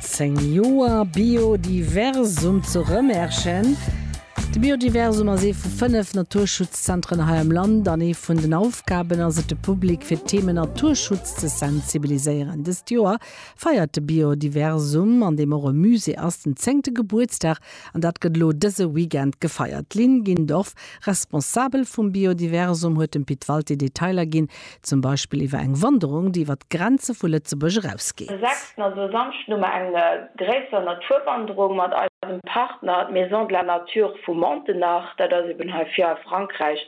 Zéng Joer Biodiversum zu Rëmerschen. De Biodiversum ass ee vu fënnef Naturschutzzentren hei am Land an ee vun den Aufgaben ass et, de Public fir d'Theme Naturschutz ze sensibiliséieren. Dëst Joer feiert de Biodiversum, an deem och e Musée ass, den zéngte Gebuertsdag an dat gëtt elo dëse Weekend gefeiert. D'Lynn Gindorff, Responsabel vum Biodiversum, huet dem Pit Walté Detailer ginn, Zum Beispill iwwer eng Wanderung, déi iwwer d'Grenze vu Lëtzebuerg erausgeet. Sechsten, also e Samschden, hu mer eng gréisser Naturwanderung mat eisem Partner d'Maison de la Nature vu Montenach. Dat ass eben hei vir a Frankräich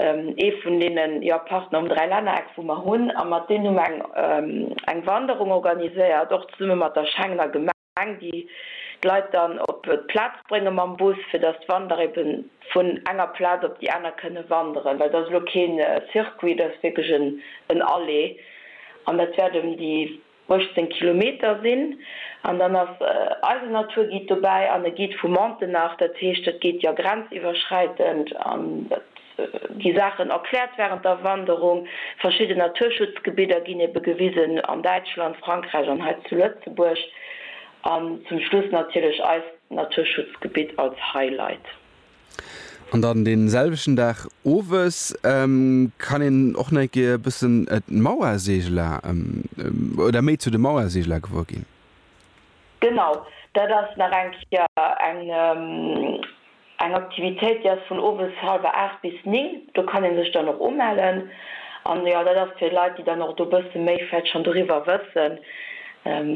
ee vun deene Partner um Dräilännereck, wou mer hunn. A mat deenen hu mer eng Wanderung organiséiert, och zesumme mat der Schengener Gemeng. Gemeng, déi d'Leit dann op d'Plaz brénge mam Bus, fir datt d'Wanderer ebe vun enger Plaz op déi aner kënne wanderen. Well dat ass elo keen Circuit, dat ass wierklech en Aller an dat wäert ëm déi 18 Kilometer sinn. An dann ass eisen Naturguide dobäi an e Guide vu Montenach. Dat heescht, dat geet jo grenziwwerschräitend an dat. gi Saachen erkläert wärend der Wanderung. Verschidden Naturschutzgebidder ginn ebe gewisen, an Däitschland, Frankräich an hei zu Lëtzebuerg. An zum Schluss natierlech eist Naturschutzgebitt als Highlight. An dann dee selwechten Dag owes kann een och nach eng Kéier e bëssen d'Mauerseegeler oder méi zu de Mauerseegeler gewuer ginn. Genau, dat ass nach eng Kéier eng Aktivitéit, déi ass vun owes hallwer aacht bis néng. Do kann ee sech dann och umellen. An jo, dat ass fir Leit, déi dann och do e bësse méi vläicht schonn doriwwer wëssen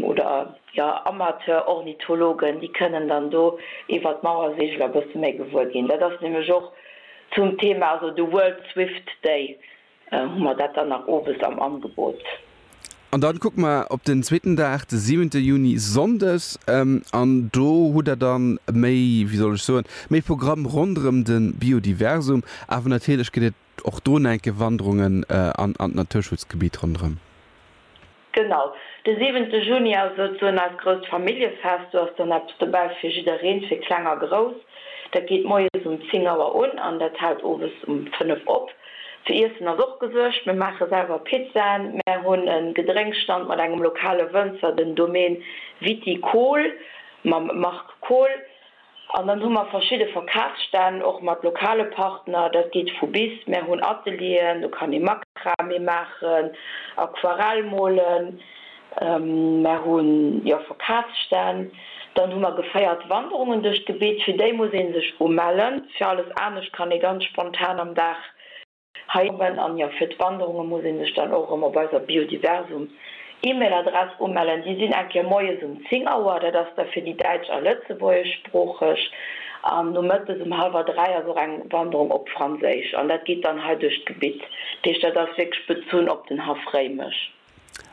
oder jo Amateur-Ornithologen, déi kënnen dann do iwwert d'Mauerseegel e bësse méi gewuer ginn. Dat ass nämlech och zum Thema, also de World Swift Day. Hu mer dat dann nach owes am Angebot. An dann kucke mer op den zweeten Dag, de siwente Juni, Sonndes. An do hutt Der dann méi, wéi soll ech soen, méi Programm ronderëm de Biodiversum. Awer natierlech gëtt et och drun enke Wanderungen an d'Naturschutzgebitt ronderëm. Genau, de siwente Juni ass souzesoen eist grousst Familljefest. Do ass dann eppes dobäi fir jiddereen, fir Kleng a Grouss. Dat geet moies um 10 Auer un an dat hält owes um 5 op. Fir Iessen ass och gesuergt, mir maache selwer Pizzaen, mär hunn e Gedrénkstand mat engem lokale Wënzer, den Domaine Viticole mam Marc Kohl. An dann hu mer verschidde Verkafsstänn, och mat lokale Partner, dat geet vu bis. Mär hunn Atelieren, do kann ee Makramee maachen, Aquarell molen. Mär hu jo Verkafsstänn. Dann hu mer geféiert Wanderungen duerch d'Gebitt, fir déi muss ee sech umellen. Fir alles anescht kann ee ganz spontan am Dag Hei oben, an jo, fir d'Wanderunge muss ee sech dann och erëm op eiser Biodiversum E-Mail Adress umellen. Déi sinn eng Kéier moies um 10 Auer, dat ass da fir déi däitsch a lëtzebuergeschsproocheg, an nomëttes um hallwer 3 ass och eng Wanderung op Franséisch, an dat geet dann hei duerch d'Gebitt. Dat heescht, dat ass wierklech bezunn op den Haff Réimech.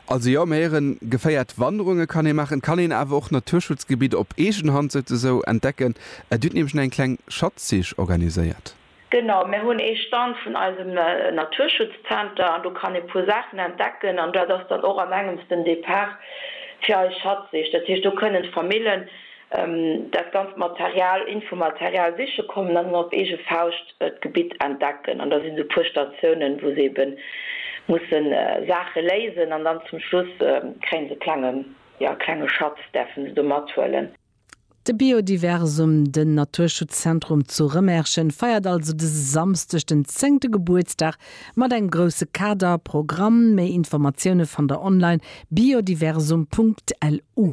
Also jo, mir héieren, geféiert Wanderunge kann ee maachen, et kann een awer och Naturschutzgebitt op eegen Hand souzesoen entdecken. Dir hutt nämlech nach eng kleng Schatzsich organiséiert. Genau, mir hunn ee Stand vun eisem Naturschutzzenter an do kann ee puer Saachen entdecken an dat ass dann och an engems den Depart fir eis Schatzsich. Dat heescht do kënnen d'Famillen dat ganzt Material, Infomaterial siche kommen an op eege Fauscht d'Gebitt entdecken an da sinn esou puer Statiounen wou se eben musse Saache léisen an dann zum Schluss kréie se e klenge Schatz, däerfe se do mathuelen. De Biodiversum, den Naturschutzzentrum zu Remerschen, feiert also dëse Samsdeg den zéngte Gebuertsdag mat engem grousse Kader, Programm. Méi Informatioune fannt der online, biodiversum.lu.